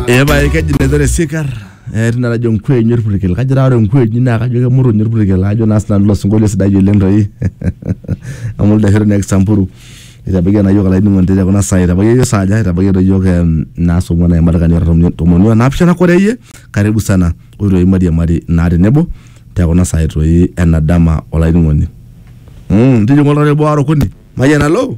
Ee pae keji Nezere Sikar eh, tina najo nkuenyi orpurkel kajo taa ore nkuenyi naa kajo kemuruny orpurkel ajo naa sinanu ilo sinkolio sidai oleng toi amu ildashero naa Kisamburu itabaiki naa iyiook olainining'oni te kuna saai itabaiki iyiook saa aja itabaiki toi iyiook em, naa saa ong'uan aimat kani ora tomoni o naapishana kore iyie karibu sana ore toi mairiamari naa tenebo te kuna saai toi ena dama olainining'oni Mm, tijing'a oltau le boo aara okuni mayian alo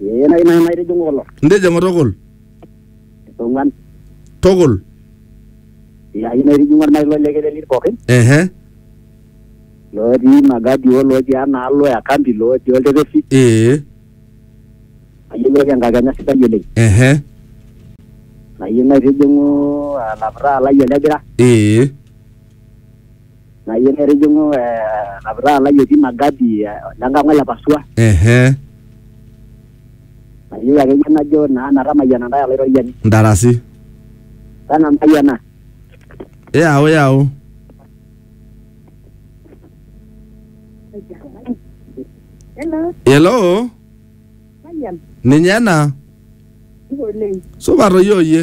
Ee nai nai naitijing'u kulo. Intijing'u tukul. Ong'uan. Tukul. Ee ayieu naitijing'u ormarei lo Lekelelit pookin. Ehe. Lootii Magadi o lootii enaalo e Kambi lootii Oltepesi. Ee. Ayieu naoki enkakenya sidai oleng. Ehe. Ayieu naitijing'u alaputaa lai o Lebira. Ee. Nayieu netijing'u lapitaa lai otii ina gadi lenkang ole Pasua. Ehe. Nayieu akeyie najo naa metamayiana ntae Olaitoriani. Ntarasi. Pena ntae ena. Yau yau. Hello. Ninye ena. Supat oyie oyie.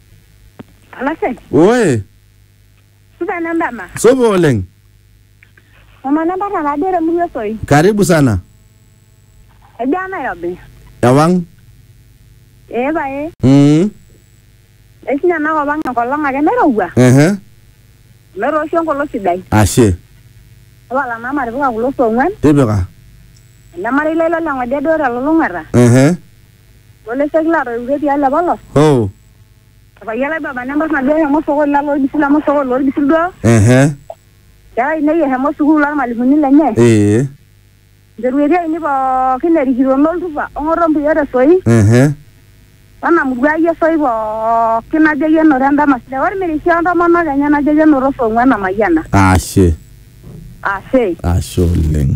Alasek, Oe, supa ena ndama. supa oleng. Mama nambata naduo temurua esoi. Karibu sana. Ejaa Nairobi. Ewang. Ee pae. Mm. Eishunye ena kop ang enkolong ake nairowua. Ehe. Netoosho enkolong sidai. Ashe. Tapala naa matipika kulo saa ong'uan. Tipika. Enemarei lai loleng'ode duo telulung'ata. Ehe. Oleseki laatoiwutuo tialo apa lo. Oh. Epayian lai baba nembar naduo eshomo osokoni lalo olbisil amu osokoni lolbisil duo. Ehe. Nkera ainei eshomo sukuul olmalimuni lenye. Ee. Nchorueti ainei pookin erikito noltupa ong'oto mpuyo te soi. Ehe. Wena murua ai esoi pookin najo ayie enoto endama sidai. Olmirishi o ntomonok enye najo ayie enoto saa ong'uan amayiana. Ashe. Ashe. Ashe oleng.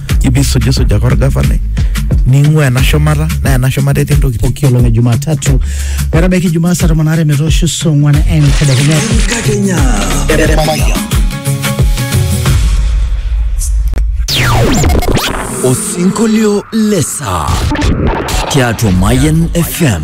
ibisujisujaka orgavanai ning'ua ena shumata naa ena shumata etii ntokitin pooki olong e Jumatatu metabaiki Jumaa saa tomon aare metoosho saa ong'wan entedekenya. Enkakenya. Osinkolio lesa tiatua Mayan FM.